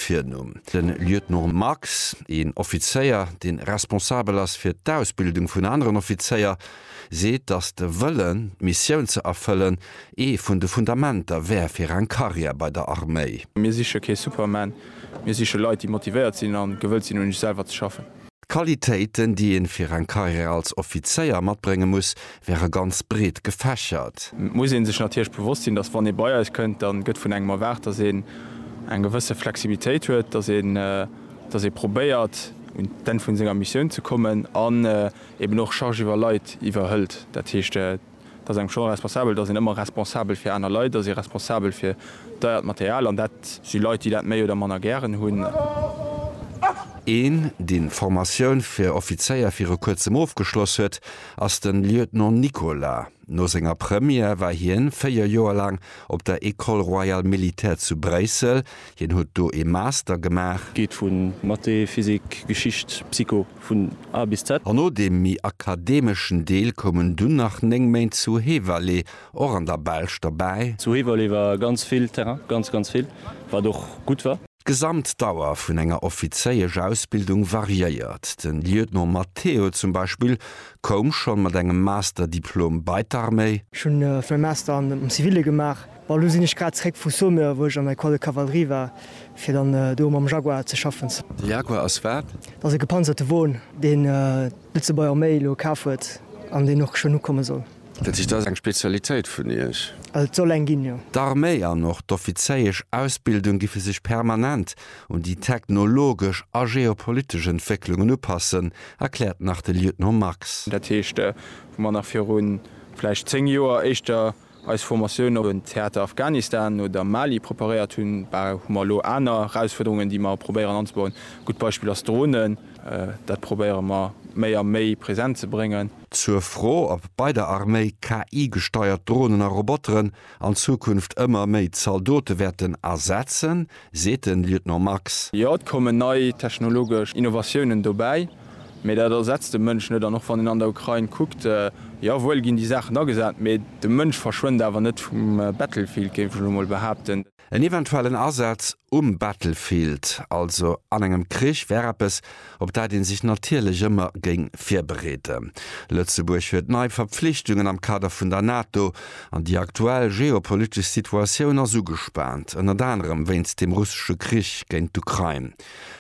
Virnumm. De Lieutenant Max, een Offizéier, dee responsabel ass fir d'Ausbildung vun aneren Offizéier, seet, datt de Wëllen, d'Missioun ze erfëllen, ee vun de Fundamenter wär fir eng Karriär bei der Arméi. Mir siche kee Superman, mir siche Leit, déi motivéiert sinn a gewëllt sinn, un iech selwer ze schaffen. D'Qualitéiten, déi ee fir eng Karriär als Offizéier matbrénge muss, wäre ganz breet gefächert. Et muss ee sech natierlech bewosst sinn, datt wann ee bei eis kënnt, da gëtt vun engem erwaart, datt een eng gewësse Flexibilitéit huet, datt ee probéiert un d'Enn vu senger Missioun ze kommen an eeben och Charge iwwer Leit iwwerhëlt, dat heescht, Et ass engem schonn responsabel, et ass een ëmmer responsabel fir aner Leit, et ass ee responsabel fir deiert Material an dat si Leit, déi dat méi oder manner gären hunn. Een, dee Formatioun fir Offizéier viru kuerzem ofgeschloss huet, ass de Lieutenant Nicolas. No senger Première war hien véier Joer laang op der École royale militaire zu Bréissel, Hien huet do ee Master gemaach. Geet vu Mathé, Physik, Geschicht, Psycho, vun A bis Z. An no deem méi akademeschen Deel koumen dunn nach 9 Méint zu Heverlee, och an der Belsch, derbäi. Zu Heverlee war ganz vill Terrain, ganz, ganz vill, wat och gutt war. D'Gesamtdauer vun enger Offizéiesch-Ausbildung variéiert. De Lieutenant Matteo zum Beispill koum schonn mat engem Master-Diplom bei d'Arméi. Ech hunn e Master am Zivile gemaach. Bon, elo sinn ech grad zréck vu Saumur, wou ech an der Ecole de Cavalerie war, fir dann do mam Jaguar ze schaffen. De Jaguar ass wat? Dat ass e gepanzerte Won, deen d'Lëtzebuerg Arméi elo kaf huet an deen och schonn ukomme soll. Dat heescht, dat ass eng Spezialitéit vun Iech? Also et soll eng ginn, jo. D'Arméi an och d'offizéiesch Ausbildung giffe sech permanent un déi technologesch a geopolitesch Entwécklungen upassen, erkläert nach de Lieutenant Max. Dat heescht, wou mer nach virun vläicht zéng Joer éischter eis Formatioun op den Theater Afghanistan oder Mali preparéiert hunn, hu mer elo aner Erausfuerderungen, déi mer probéieren anzebauen. E gutt Beispill ass Dronen. Dat probéiere mer méi a méi present ze bréngen. Zur Fro, ob bei der Arméi KI-gesteiert Dronen a Roboteren an Zukunft ëmmer méi Zaldote wäerten ersetzen, seet de Lieutenant Marx. Jo, et kommen nei technologesch Innovatiounen dobäi, mee dat ersetzt de Mënsch net. An och wann een an der Ukrain kuckt, jo wuel ginn déi Saachen agesat, mee de Mënsch verschwënnt awer net vum Battlefield, géif ech elo mol behaapten. En eventuellen Asaz um Battlefield, also an engem Krich, wär eppes, op dat ee sech natierlech ëmmer géing virbereeden. Lëtzebuerg huet nei Verpflichtungen am Kader vun der NATO, an déi aktuell geopolitesch Situatioun ass ugespaant, ënnert anerem wéinst dem russesche Krich géint d'Ukrain.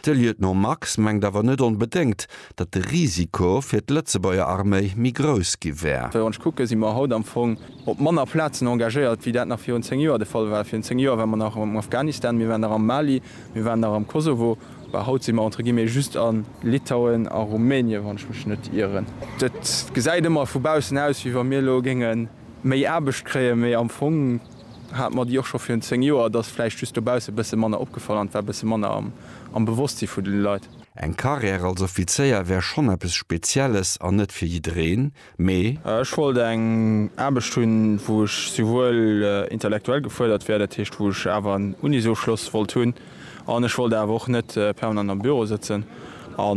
De Lieutenant Max mengt awer net onbedéngt, datt de Risiko fir d'Lëtzebuerger Arméi méi grouss gi wär. Wann ech kucke si mer haut am Fong op manner Plazen engagéiert, wéi dat nach virun zéng Joer de Fall war. Virun zéng Joer ware mer nach am Afghanistan, mir waren nach am Mali, mir waren nach am Kosovo. Bah, haut si mer entre guillemets just a Litauen a Rumänie, wann ech mech net ieren. Et gesäit ëmmer vu baussen aus, wéi wa mir elo géinge méi Aarbecht kréien, mee am Fong hate mer déi och scho virun zéng Joer. Et ass vläicht just dobausse bësse manner opgefall an et war bësse manner am Bewosstsi vun de Leit. Eng Carrière als Offizéier wär schonn eppes Spezielles an net fir jiddereen, mee. Ech wollt eng Aarbecht hunn, wou ech souwuel intellektuell gefuerdert wär, dat heescht, wou ech awer en Unisofschloss wollt hunn, an ech wollt awer och net permanent am Büro sëtzen a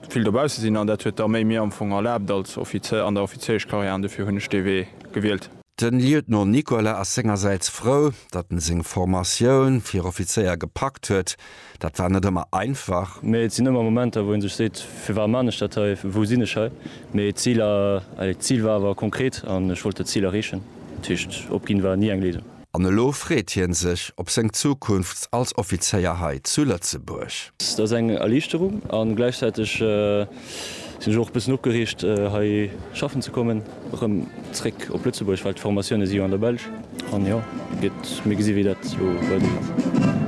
vill dobausse sinn. An dat huet d'Arméi mir am Fong erlaabt als Offizier an der Offiziereschkarriär, an dofir hunn ech dee Wee gewielt. Den Lieutenant Nicolas ass sengersäits frou, datt en seng Formatioun fir Offizéier gepackt huet. Dat war net ëmmer einfach. Mee et sinn ëmmer Momenter, wou ee sech seet, firwat man ech dat hei, wou sinn ech hei? Mee d'Zil, allez, d'Zil war awer konkret an ech wollt dat Zil erreechen. Dat heescht, opginn war ni eng Léisung. An elo freet hien sech op seng Zukunft als Offizéier hei zu Lëtzebuerg. Dat ass eng Erliichterung an gläichzäiteg sinn ech och bëssen opgereegt hei schaffen ze kommen. Erëm zréck op Lëtzebuerg, well d'Formatioune si jo an der Belsch. An jo, gitt mir gesi wéi dat elo weidergeet.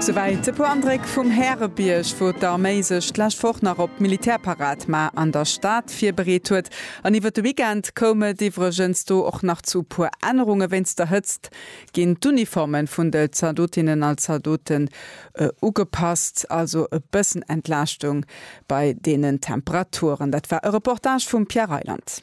Souwäit e puer Andréck vum Härebierg, wou d'Arméi sech d'lescht Woch nach op d'Militärparad ma an der Stad virbereet huet. An iwwer de Weekend koum et iwwregens do och nach zu e puer Ännerunge. Wéinst der Hëtzt ginn d'Uniforme vun de Zaldotinnen a Zaldote Ugepasst, also e bëssen Entlaaschtung bei deenen Temperaturen. Dat war e Reportage vum Pierre Reyland.